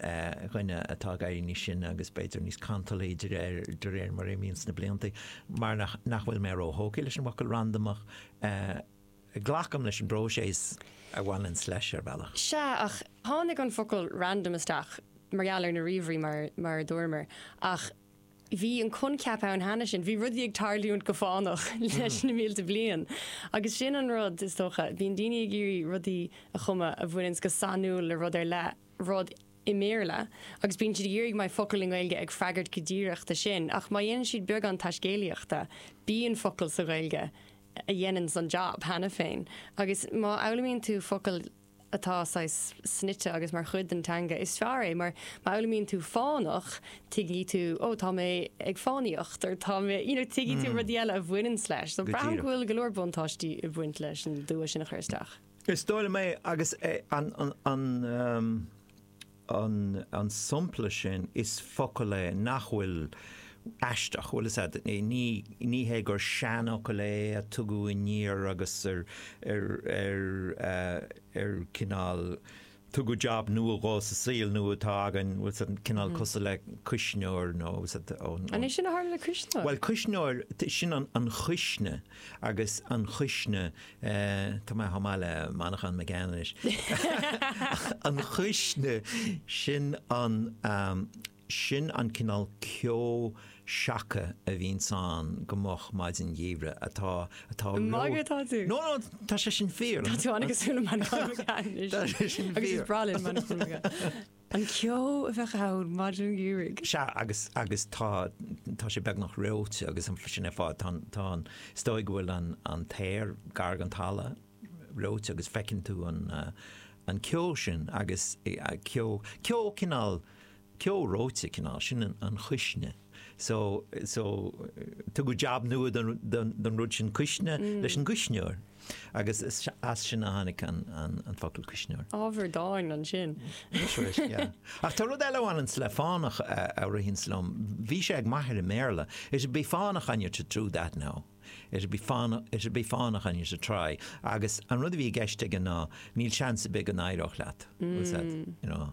dhuine atá ag éirí níos sine agus b'fhéidir níos cantalthaí de réir, de réir mar a imíonn na blianta, mar nach bhfuil mé ró-thógtha leis an bhfocal randamach. Glacaim leis an bpróiseas a bhaineanns leis, ar bhealach. Sea, ach tháinig an focal random isteach mar gheall ar na ríomhairí, mar, mar a dúramar, ach bhí an coincheap ann cheana. Sin. Bhí rudaí ag tarlúint go fánach leis na mílte bliain. Agus sin an rud, is dócha, bíonn daoine ag iarraidh rudaí a chumadh a bhaineanns go sainiúil le rud ar leith, rud i mBéarla agus bíonn siad ag iarraidh go mbeidh focal i nGaeilge ag freagairt go díreach do sin ach má dhéanann siad beagán taiscéalaíochta bíonn focal sa Ghaeilge a dhéananns an jab cheana féin agus má fhoghlaimíonn tú focal atá saghas snoite agus mar chuid den teanga is fearr é mar má fhoghlaimíonn tú fánach tuigfidh tú oh tá mé ag fánaíocht or tá mé you know tuigfidh tú rudaí eile a bhaineanns leis so Go díreach. braithim go bhfuil go leor buntáistí ag baint leis an dua sin a chur isteach. Is dóigh liom é agus an sompla sin is focal é nach bhfuil aisteach, bhuel is é, ní hé gur seanfhocal é a tugadh aniar agus ar cineál, tugadh jab nua dhó sa saol nua atá againn, cineál cosúil le cuisneoir nó. An é sin a tharla le cuisneoir? Bhuel, cuisneoir, sin an chuisne agus an chuisne, tá mé chomh maith le Manchán Magan anois, an chuisne, sin an. Sin an cineál ceo seaca a bhíonns ann go moch maidin Gheimhridh atá, atá Ní ag magadh atá tú? no, no, tá sé sin fíor. Tá tú an-chosúil le Manchán anois. Tá sé sin Agus is fíor. breá linn Manchán. An ceo a bheadh ann maidin gheimhridh. Sea, agus, agus tá, tá sé beagnach reoite agus an fl- sin ar fad, tá an, tá an, is dóigh go bhfuil an, an t-aer gar don talamh reoite agus feiceann tú an, an ceo sin agus eh, ceo, ceo cineál, ceo reoite cineál sin an chuisne. So, so, tugadh jab nua don, don, don rud sin cuisne leis an gcuisneoir. Agus as sin a tháinig an, an, an focal cuisneoir. Ábhar dáin ansin. Sin é, yeah. Ach tá rud eile a bhaineanns le fánach a, a ritheanns liom. Bhí sé ag m'athair i mBéarla, it'd be fánach on you to do that now. It'd be fánach, it'd be fánach on you to try. Agus an rud a bhí i gceist aige ná, níl seans ar bith go n-éireodh leat. What's that, you know.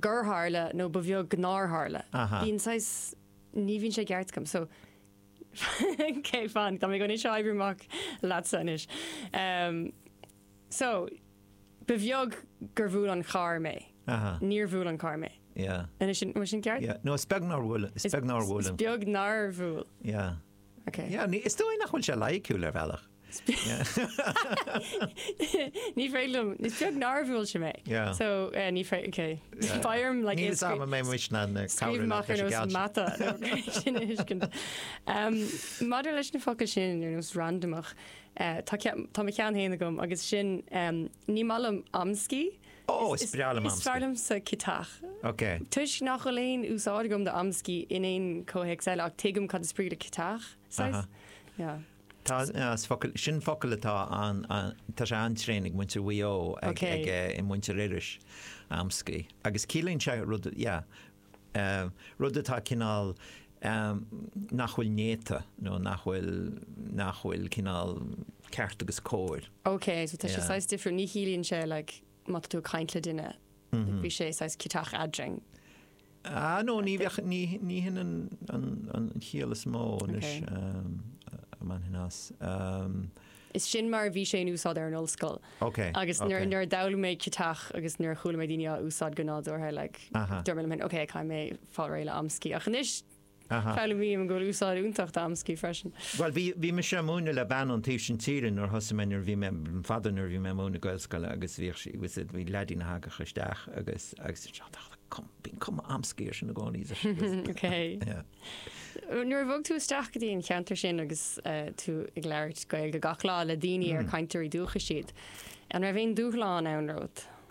gur tharla nó ba bheag nár tharla. Bíonn saghas, ní bhíonn sé i gceart agam, so cé fan, tá mé á oibriú amach leatsa anois. So, ba bheag gur bhuail an carr mé. Níor bhuail an carr mé. Anois sin, bhfuil sin ceart? No, is beag nár bhuail, is beag nár bhuail an. Is beag nár bhuail. Yeah. Ok. Yeah, is dóigh nach bhfuil sé loighiciúil ar bhealach. Ní féidir liom, is beag nár bhuail sé mé. Yeah. So, eh, ní féidir, ok. Yeah. Ba orm, like, Níl is scríobh- ama mé muis na na scríobh cabhraí amach ar nós mata nó sin a thuiscint. Um, Maidir leis na focail sin ar nós randamach, eh, tá cean- tá mo cheann féin agam agus sin, em, ní maith liom amscaí. Ó, is breá liom Is fearr amscaí. liomsa ciotach. Ok. Toisc nach bhfuil aon úsáid agam d'amscaí in aon chomhthéacs eile ach tuigim cad is brí le ciotach, saghas. Aha. Yeah. Tá, is focal, sin focal atá an, tá sé an-tréan ag muintir Mhaigh Eo, ag muintir Iorrais amscaí agus ciallaíonn sé rud, yeah, rud atá cineál nach bhfuil néata nó nach bhfuil, nach bhfuil cineál ceart agus cóir. Okay, so tá sé saghas difriúil, ní chiallaíonn sé like. Má tá tú ag caint le duine, bhí sé saghas ciotach eadrainn. Ah, no, ní bheadh, ní, ní hin an, an, an chiall is mó anois, a mbainfinn as. Umm. Is sin mar a bhí sé in úsáid ar an ollscoil. Ok, ok. Agus nuair, nuair a d'fhoghlaim mé ciotach agus nuair a chuala mé daoine á úsáid go nádúrtha, like, dúirt mé liom féin, ok, caithfidh mé fáil réidh le amscaí. Ach anois, foghlaimím go bhfuil úsáid fhiúntach d'amscaí freisin. Bhuel, bhí, bhí mise a' múineadh le bean ón taobh sin tíre nuair a thosaigh mé, nuair a bhí mé, an father, nuair a bhí mé a' múineadh Gaelscoile agus bhíodh sí, was it, bhí leaidín a thagadh isteach agus, agus bhí sé like cum, bíonn cuma amscaí air sin i gcónaí is a, is, Ok. yeah. Nuair a bhog tú isteach go dtí an cheantar sin agus eh, tú ag labhairt Gaeilge gach lá le daoine ar mm. cainteoirí dúchais iad, an raibh aon dúshlán ann romhat?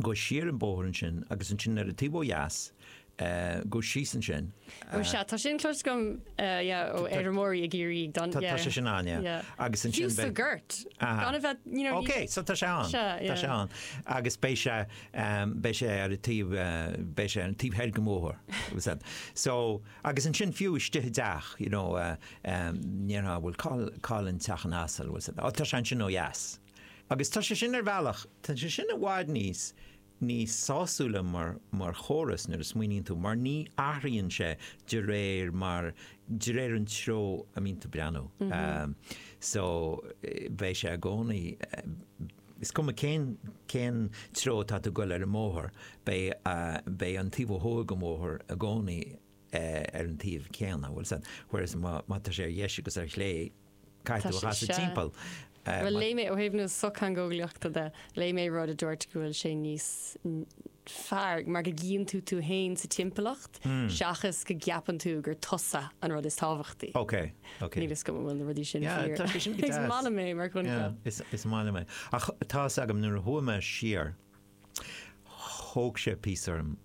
gabh siar an bóthar ansin agus ansin ar an taobh ó dheas, gabh síos ansin. Ó sea, tá sin clos agam, yeah, ó fheirmeoirí i gCiarraí ag don, yeah. Tá sé sin an, yeah. Agus ansin. Fiú sa gort. Gan a bheith, you know. Okay, so tá sé an. Tá sé an. Agus beidh sé, beidh sé ar an taobh, beidh sé an taobh thoir dhon mbóthar. So, agus ansin fiú istigh i dteach, you know, mar cá bhfuil, cá'il an teach an asail, tá sé ansin ó dheas. Agus tá sé sin, ar bhealach, tá sé sin i bhfad níos, níos sásúla mar, mar chóras nuair a smaoiníonn tú, mar ní athraíonn sé de réir mar, de réir an treo a mbíonn tú ag breathnú. So, beidh sé i gcónaí, is cuma cén, cén treo atá tú ag goil ar an mbóthar, beidh, beidh an taobh ó thuaidh den bhóthar i gcónaí ar an taobh céanna, bhuel, whereas má, má tá sé ar dheis agus ar chlé, Tá sé seo, bhuel léigh mé ó thaobh na sochtheangeolaíochta de, léigh mé rud a dúirt go bhfuil sé níos fearr mar go gcíonn tú tú fhéin sa timpeallacht seachas go gceapann tú gur tusa an rud is tábhachtaí. Ok, ok. Níl 'fhios agam an bhfuil na rudaí sin fíor. Yeah, tá sé sin go deas. Is maith liom é mar choincheap. Yeah, is maith liom é. Ach tá 'fhios agam nuair a chuaigh mé siar, Thóg sé píosa orm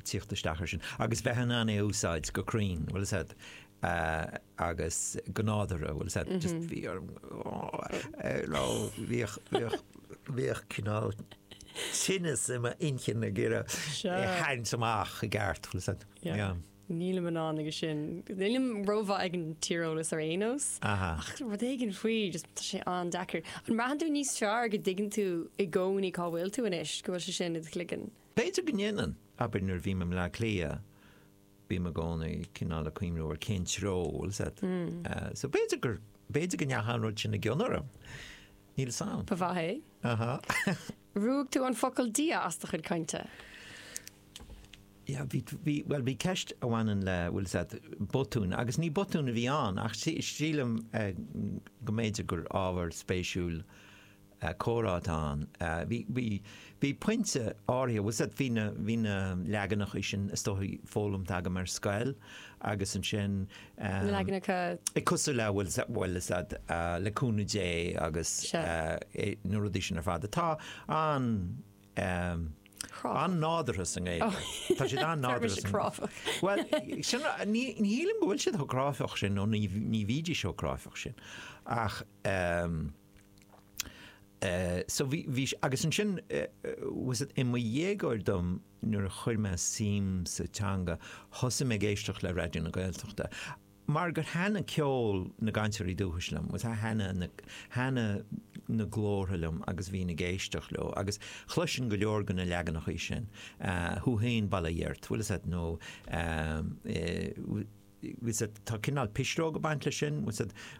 tíocht isteach air sin agus bheith in ann é a úsáid go cruinn, bhfuil 'fhios a'd, agus go nádúrtha, bhfuil 'fhios a'd, just bhí orm, nó bhíodh, bhíodh, bhíodh cineál tinneas i m'inchinn ag iarraidh é a sheinnt amach i gceart, bhfuil 'fhios a'd, yeah. Nílim in ann agus sin. Nílim rómhaith ag an tíreolas ar aon nós. Aha. Ach rud éigin faoi, just tá sé an-deacair. An mbraitheann tú níos fearr go dtuigeann tú i gcónaí cá bhfuil tú anois, go bhfuil sé sin i do chloigeann? B'fhéidir go ndéanann. Abair nuair a bhím i mBleá Cliath, bím i gcónaí cineál ag cuimhniú ar cén treo, bhfuil 'fhios a'd. So b'fhéidir gur, b'fhéidir go ndeachaigh an rud sin i gcion orm. Níl 'fhios a'm. Ba mhaith é. Aha. Ruaig tú an focal 'Dia' as do chuid cainte. Bhuel, bhí ceist a bhaineann le, bhfuil 'fhios a'd, botúin, agus ní botún a bhí ann, ach sílim go mb'fhéidir gur ábhar spéisiúil comhrá atá ann. Bhí pointe áirithe, bhfuil 'fhios a'd, bhí na leaganacha sin, is dóichí, foghlamtha agam ar scoil, agus ansin Na leaganacha. Eh cosúil le, bhfuil 'fhios a'd, le cúnamh Dé agus, na rudaí sin ar fad atá an, an-nádúrtha sa nGaeilge. Tá siad an-nádúrtha sa. Tá siad cráifeach. Bhuel, sin, ní, ní shílim go bhfuil siad chomh cráifeach sin nó ní, ní bhídís chomh cráifeach sin ach, so bhí, bhí, agus ansin 'fhios a'd i mo dhéagóir dom nuair a chuir mé suim sa teanga, thosaigh mé ag éisteacht le Raidió na Gaeltachta. Mar gur thaithnigh ceol na gcainteoirí dúchais liom, 'fhios a'd, thaithnigh na, thaithnigh na glórtha liom agus bhínn ag éisteacht leo agus chloisinn go leor de na leaganacha sin, chloisinn bail ó Dhia ort, bhfuil 'fhios a'd, nó, tá cineál pisreog ag baint leis sin,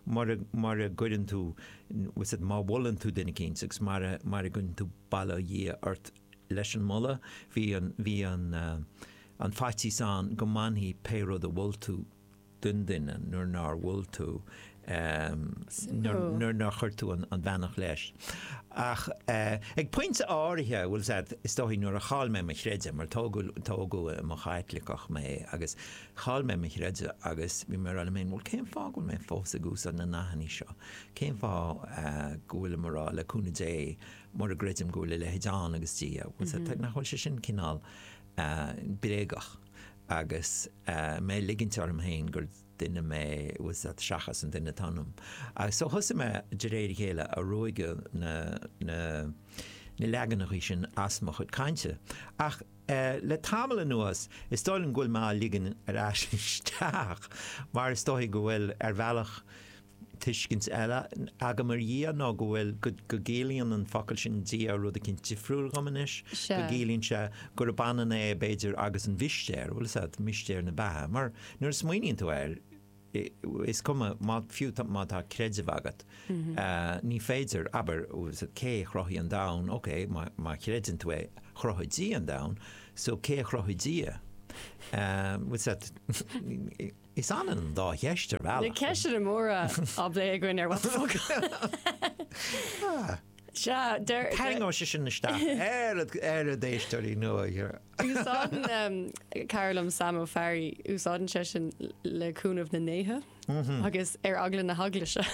mura gcuireann tú, 'fhios a'd, má mholann tú duine eicínt agus mara gcuireann tú bail ó Dhia ort leis an moladh, bhí an faitíos ann go mbainfí pé rud a mhol tú den duine nuair nár mhol tú nuair nár chuir tú an bheannacht leis. Ach ag pointe áirithe, bhfuil 'fhios a'd, is dóichí, nuair a chaill mé mo chreideamh, mar tógadh i mo Chaitliceach mé, agus chaill mé mo chreideamh agus bhí mé ag rá liom féin, bhuel cén fáth go bhfuil mé fós ag úsáid na nathannaí seo? Cén fáth go bhfuilim ag rá, le cúnamh Dé, mura gcreidim go bhfuil a leithéid ann agus Dia, nach bhfuil sé sin cineál bréagach agus mé ag ligint orm féin gur duine mé 'fhios a'd seachas an duine atá ionam. Agus so thosaigh mé de réir a chéile ag ruaigeadh na na na leaganachaí sin as mo chuid cainte. Ach eh le tamall anuas is dóigh liom go bhfuil mé á ligean ar ais isteach mar is dóichí go bhfuil ar bhealach Tuiscint eile agam ar Dhia ná go bhfuil, go gciallaíonn an focal sin Dia rud eicínt difriúil dhom anois, go gciallaíonn sé gurb ionann é b'fhéidir agus an mhistéir, bhuel is ea, mistéir na beatha, mar nuair a smaoiníonn tú air, is cuma, fiú má tá creideamh agat, ní féidir, abair, cé a chruthaigh an domhan, ok, má chreideann tú é, chruthaigh Dia an domhan, so cé a chruthaigh Dia? Is ionann dá cheist ar bhealach. Na ceisteanna móra á bplé againn ar What the Focal. Sea, deir. Tharraingeoidh sé sin isteach ar ar a d'éisteoirí nua. Úsáideann cara liom Sam Ó Fearraigh, úsáideann sé sin le cúnamh na ndéithe agus ar eagla na hEaglaise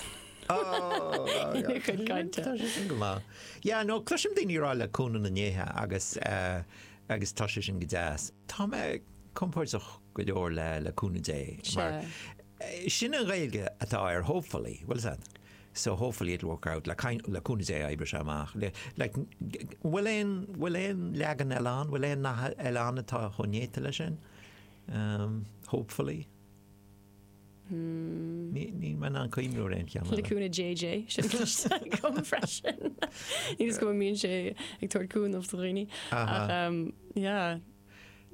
ina chuid cainte. Tá sé sin go maith. Yeah, no, cloisim daoine ag rá le cúnamh na ndéithe agus agus tá sé sin go deas. Tá mé compordach go leor le le cúnamh Dé mar sin an Ghaeilge atá ar hopefully, bhuel is ea, so hopefully it'll work out, le kind le cúnamh Dé oibreoidh sé amach le like bhfuil aon bhfuil aon leagan eile ann, bhfuil aon nath eile ann atá chomh néata leis sin? Hopefully. Níl mé in ann cuimhneamh ar aon cheann eile. Le cúnamh JJ, sin a chloistear agam freisin. Ní fios go bhfuil mbíonn sé ag tabhairt cúnamh do dhaoine. Ach yeah.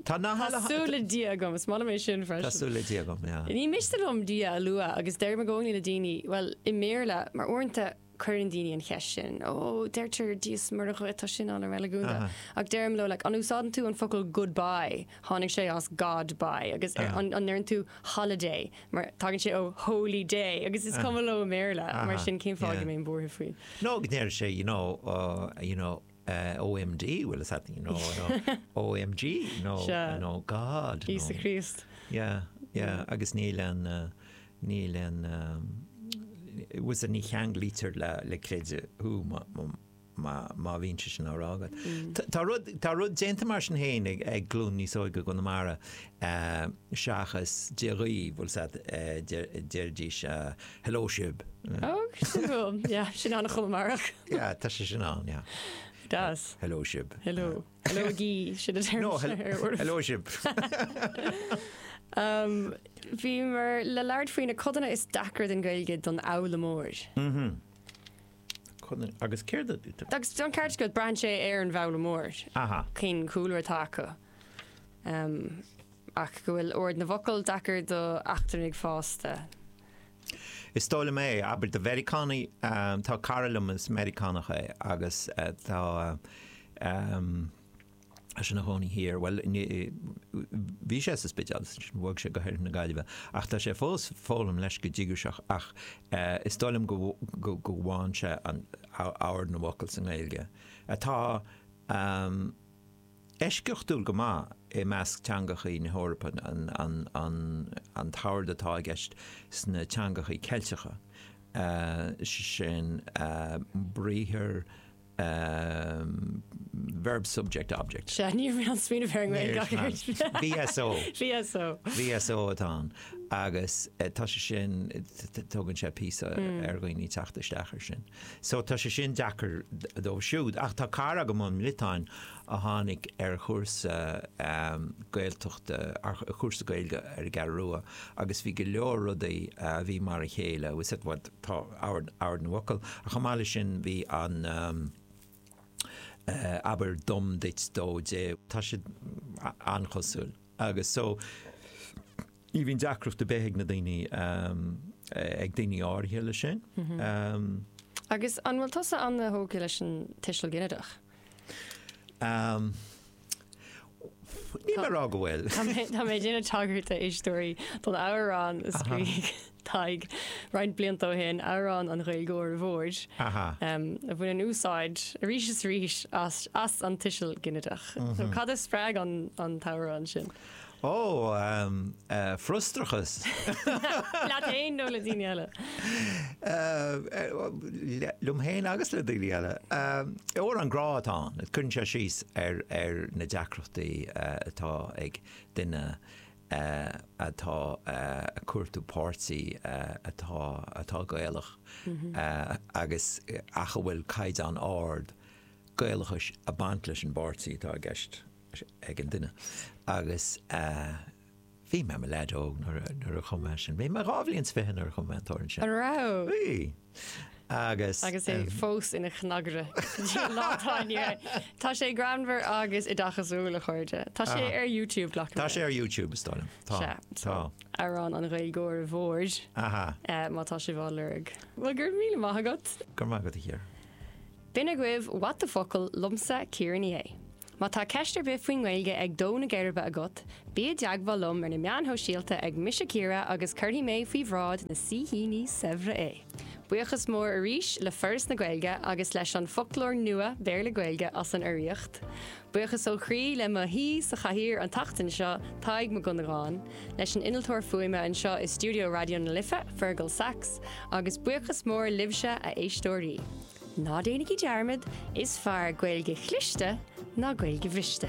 Tá na halla. Tá súil le Dia agam, is maith liom é sin freisin. Tá súil le Dia agam, yeah. Ní miste liom Dia a lua agus deirim i gcónaí le daoine, bhuel, i mBéarla, mar uaireanta, Cuireann daoine an cheist sin, ó deirtear Dia is Muire dhuit, tá sin an-reiligiúnda, ach deirim leo, like, an úsáideann tú an focal goodbye, tháinig sé as God bye, agus an ndeireann tú holiday, mar tagann sé ó holy day, agus is cuma leo i mBéarla, mar sin cén fáth a mbeinn buartha faoi? Nó go ndeir sé, you know, you know. OMD, bhuel is ea, you know, no, OMG, no, Sea. no, God, no. Íosa Críost. Yeah, yeah, agus níl an, uh, níl an, um, it was an ní cheanglaítear le, le creideamh, fiú, má, má, má, má bhíonn sé sin á rá agat. Tá- Tá rud, tá rud déanta mar sin féin ag, ag glún níos óige i gConamara, uh, seachas Dia dhaoibh, bhuel is ea, uh, deir, deiridís, uh, Hello sibh. Oh, sin bhuail. Yeah, sin an-Chonamaireach. Yeah, tá sé sin ann, yeah. It does. Hello sibh. Hello. Heileoigí, sin an téarma seo ar uairibh. Hello sibh. Bhíomar le labhairt faoi na codanna is deacra den Ghaeilge don fhoghlaimeoir. Codanna, agus céard a. Agus an ceart acu go bhfuil braitheann sé ar an bhfoghlaimeoir. Aha. Cén cúlra atá acu. Ach go bhfuil ord na bhfocal deacair d'eachtrannaigh fásta. Is dóigh liom é, abair do Mheiriceánaigh, tá cara liom is Meiriceánach é agus tá sé ina chónaí thiar, bhuel, bhí sé sa Spidéal, bhog sé go hOirthear na Gaillimhe, ach tá sé fós ag foghlaim leis go díograiseach ach is dóigh liom go bhfaigheann sé ord na bhfocal sa nGaeilge atá eisceachtúil go maith i measc teangachaí na hEorpa an t-ord atá i gceist sna teangachaí Ceilteacha, sin briathar verb-subject-object. Sea, níor mhaith liom smaoineamh ar an nGaeilge ach oiread. Níor mhaith liom. VSO. VSO. VSO atá ann agus tá sé sin, tógann sé píosa ar dhaoine teacht isteach ar sin. So tá sé sin deacair dóibh siúd. Ach tá cara agam ón mBriotáin a tháinig ar chúrsa Gaeltachta, ar chúrsa Gaeilge ar an gCeathrú Rua agus bhí go leor rudaí a bhí mar a chéile, tá ord na bhfocal ach chomh maith leis sin bhí an abair dom duit dó di, tá siad an-chosúil. Agus so, ní bhíonn deacracht ar bith ag na daoine, ag daoine áirithe leis sin. Agus an bhfuil tusa an-tógtha leis an tuiseal ginideach? Níl mé ag rá go bhfuil. Tá mé ag déanamh tagairt a éisteoirí, don amhrán a scríobh Tadhg, roinnt blianta ó shin, Amhrán an Ghaeilgeora Mhóir, a bhaineann úsáid arís is arís as an tuiseal ginideach. Cad a spreag an t-amhrán sin? Ó, frustrachas. Leat fhéin nó le daoine eile? Liom fhéin agus le daoine eile. Amhrán grá atá ann, cuireann sé síos ar na deacrachtaí atá ag duine, atá ag cuartú páirtí atá atá Gaelach agus ach a bhfuil caighdeán ard Gaelachais ag baint leis an bpáirtí atá i gceist ag an duine agus bhí mé mo leaid óg nuair a nuair a chum mé sin. Bhí mé dhá bhliain 's fiche nuair a chum mé an t-amhrán sin. An raibh? Bhí. agus. Agus é fós ina chnagaire sa lá atá inniu ann. Tá sé greannmhar agus oideachasúil, a chairde. Tá sé ar YouTube, glacaim. Tá sé ar YouTube, is dóigh liom. Tá. Sea. Tá. Amhrán an Ghaeilgeora Mhóir. Aha. Má tá sibh á lorg. Bhuel, go raibh míle maith agat. Go raibh maith agat, a Chiara. B'in agaibh What the Focal! liomsa, Ciara Ní É. Má tá ceist ar bith faoin nGaeilge ag dó na geirbe agat, bí i dteagmháil liom ar na meáin shóisialta ag Mise Ciara agus cuirfidh mé faoi bhráid na saoithíní saibhre é! Buíochas mór arís le Foras na Gaeilge agus leis an Foclóir Nua Béarla-Gaeilge as an urraíocht. Buíochas ó chroí le mo shaoi sa chathaoir an tseachtain seo, Tadhg Mac Dhonnagáin, leis an innealtóir fuaime anseo i stiúideo Raidió na Life, Fergal Sachs, agus buíochas mór libhse, a éisteoirí! Ná déanaigí dearmad, is fearr Gaeilge chliste ná Gaeilge bhriste.